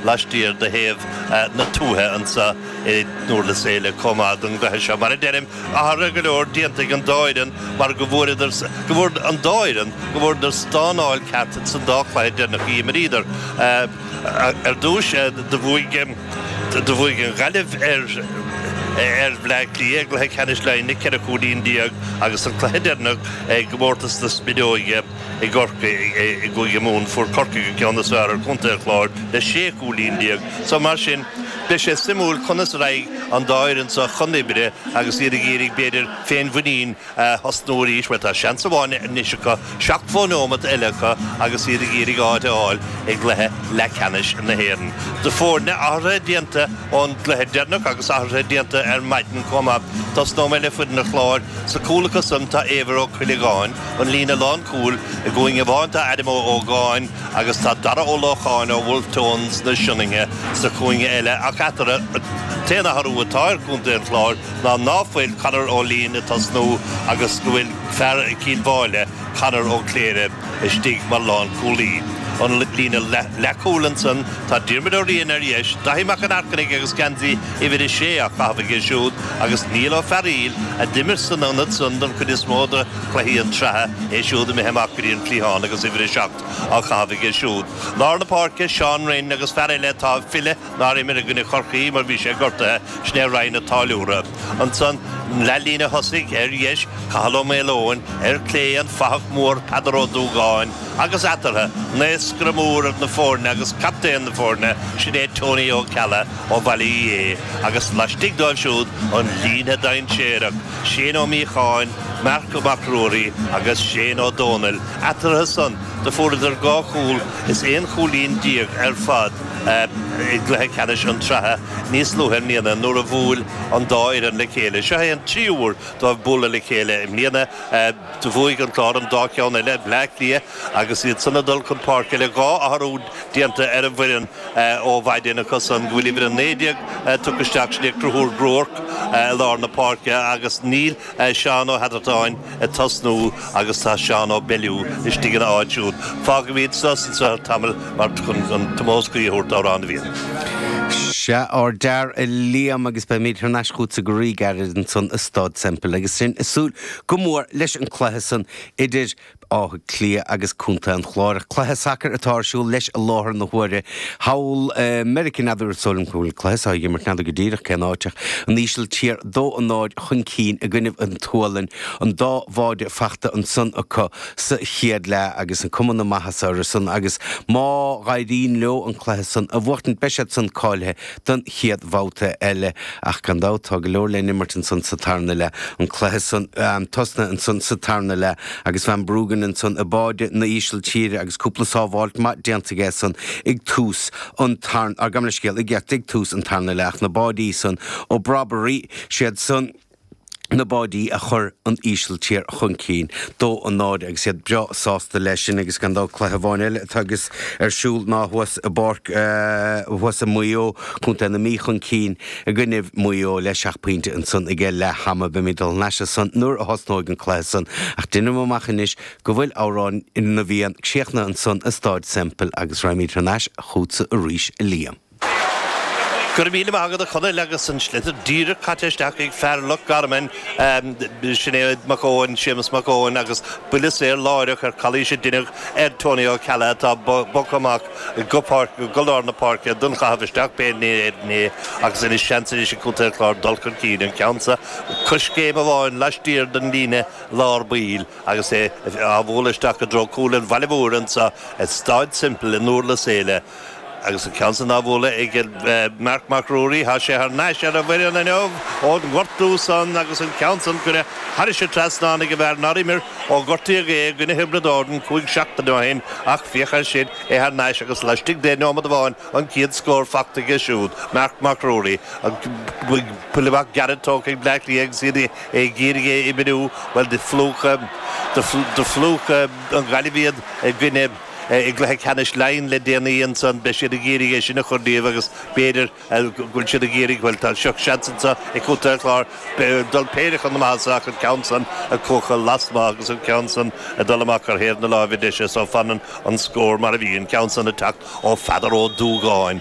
laistiar de thaobh na tuaithe anseo i nDúrlas Éile comh maith don gcluiche seo. Mar a deirim, athruithe go leor déanta ag an dá fhoireann mar go bhfuaireadar, go bhfuair an dá fhoireann, go bhfuaireadar stánáil ceart ins an dá chluiche deireanach a dh'imríodar. Ar dtúis, do bhuaigh, do bhuaigh an Ghaillimh ar, ar Bhleá Cliath i gCluiche Ceannais Laighin le ceithre chúilín déag agus an cluiche deireanach i gComórtas na Spideoige, I gCorcaigh i gCúige Mumhan, fuair Corcaigh an ceann is fearr ar Chontae an Chláir le 16 cúilín. So, mar sin, beidh sé suimiúil conas a raghaidh an dá fhoireann seo chun oibre agus iad ag iarraidh, b'fhéidir, féinmhuinín a thosnú arís, mar tá seans amháin anois acu, seachtó neomat eile acu agus iad ag iarraidh áit a fháil i gcluiche leathceannais na hÉireann. Do foirne, athruithe déanta ón gcluiche deireanach agus athruithe déanta ar maidin comh maith. Tosnóidh mé le foireann an Chláir. Sa chúl acu san tá Éibhear Ó Cuilleagáin. an líne lánchúil i gcúinne amháin tá Adam Ó hÓgáin agus tá Darragh Ó Lócháin ó Wolfe Tones na Sionainne sa chúinne eile ach eatarthu an t-aon athrú atá ar chontae an Chláir ná ná fuil Conor Ó Lín ag tosnú agus go bhfuil fear Cill Mháille, Conor Ó Cléirigh, istigh mar lánchúlaí. An líne leathchúil ansin tá Diarmuid Ó Riain ar dheis, Daithí Mac an Airchinnigh agus geansaí uimhir a sé á chaitheamh aige siúd agus Niall Ó Fearaíl, a d'imir san ionad san don chuid is mó de chluichí an tsratha, é siúd imithe amach go dtí an cliathán agus uimhir a seacht á chaitheamh aige siúd. Lár na páirce, Seán Rynne agus fear eile atá ag filleadh nár imir i gcoinne Chorcaí mar bhí sé gortaithe, sin é Ryan a Táilliúra. Ansan an leathlíne thosaigh, ar dheis, Cathal Ó Maoleoin, ar clé, an fathach mór Peadar Ó Dúgáin, agus eatarthu, naoscaire mór na foirne agus captaen na foirne, sin é Tony Ó Ceallaigh. Ó Bhaile Uí Aodha é agus laistigh dóibh siúd an líne dainséarach, Shane Ó Míocháin, Mark Mac Ruairí agus Shane Ó Dónaill, eatarthu san do fuaireadar dhá chúl is aon chúilín déag ar fad i gcluiche ceannais an tSratha níos luaithe i mbliana nuair a bhuail an dá fhoireann le chéile. Seo é an tríú huair dóibh bualadh le chéile i mbliana. Do bhuaigh an Clár an dá cheann eile, Bleá Cliath agus iad san ag dul chun páirce le dhá athrú déanta ar an bhfoireann ó mhaidin acusan go bhfuil uimhir 19 tugtha isteach, sin é Conchúr Groarke, i lár na páirce agus níl Seán Ó hEadartáin ag tosnú agus tá Seán Ó Bellew istigh ina áit siúd. Fágfaimid sos anso ar feadh tamaill mar chun an t-omós cuí a thabhairt d'amhrán na bhFiann. Sea, ardfhear, a Liam, agus beimid thar n-ais chughatsa go rí-ghairid ansan i Stáid Semple agus sinn ag súil go mór leis an gcluiche san idir Átha Cliath agus Contae an Chláir. Cluiche sacair atá ar siúl leis i láthair na huaire thall i Meiriceá. N'fheadar ar sóilim cá bhfuil an cluiche seo á dh'imirt, n'fheadar go díreach cén áit, ach an Ísiltír dó a náid chun cinn i gcoinnibh an tSualainn, an dá bháide fachta ansan acu sa chéad leath agus an cuma na maitheasa orthusan, agus má dh'éiríonn leo an cluiche san a bhuachtaint beidh siad san cáilithe don chéad bhabhta eile. Ach gan dabht, tá go leor le n-imirt ansan sa tarna leath. An cluiche san tosnaithe ansan sa tarna leath agus Verbruggen ansan i báide na Ísiltíre agus cúpla sábháilt maith déanta aige san ag tús an tarn, ah, gabh mo leithscéal, ag tús an tarna leath ach na báidí san, ó Brobbey, siad san. na báidí a chuir an Ísiltír chun cinn. Dó a náid agus iad breá sásta leis sin agus gan dabht cluiche amháin eile atá agus ar siúl ná thuas i bPáirc thuas i Maigh Eo, Co. na Mí chun cinn i gcoinnibh Mhaigh Eo le seacht bpointe ansan age leath ama. Beimid dul thar n-ais ansan nuair a thosnóidh an cluiche san ach deinim amach anois go bhfuil Amhrán na bhFiann críochnaithe ansan i Stáid Semple agus raghaimid thar n-ais chútsa arís, a Liam. Go raibh míle maith agat a Chonaill agus an sliotar díreach caite isteach ag fear Loch Garman, sin é Mac Eoin, Séamus Mac Eoin agus buille saor láithreach ar chalaois a deineadh ar Tony Ó Ceallaigh atá bogtha amach go páirc, go lár na páirce don chaitheamh isteach pé in Éirinn é agus anois seans arís ag Contae an Chláir dul chun cinn, an ceann seo coiscéim amháin laistiar den líne lár baill agus é á bhualadh isteach i dtreo chúl an bhaile mhóir anseo i Stáid Semple i nDúrlas Éile. Agus an ceann san á bhualadh ag Marc Mac Ruairí, tá sé thar n-ais ar an bhfoireann inniu ón ngortú san agus an ceann san curtha thairis an trasnán ag an bhfear nár imir ó gortaíodh é i gcoinne Thiobraid Árann cúig seachtaine ó shin ach féach air sin, é thar n-ais agus laistigh de nóiméad amháin an chéad scór fachta aige siúd, Marc Mac Ruairí, an buille amach gearra tógtha ag Bleá Cliath agus iad ag iarraidh é a oibriú, bhuel do phlúch an Ghaillimh iad i gcoinne. i gcluiche ceannais Laighean le déanaí ansan, beidh siad ag iarraidh é sin a chur díobh agus b'fhéidir go bhfuil siad ag iarraidh, bhuel tá seans anso ag Contae an Chláir dul péire chun na maitheasa ach an ceann san a chuachadh lasmuigh agus an ceann san a dul amach ar thaobh na láimhe deise so fanann an scór mar a bhí, an ceann san a teacht ó Pheadar Ó Dúgáin.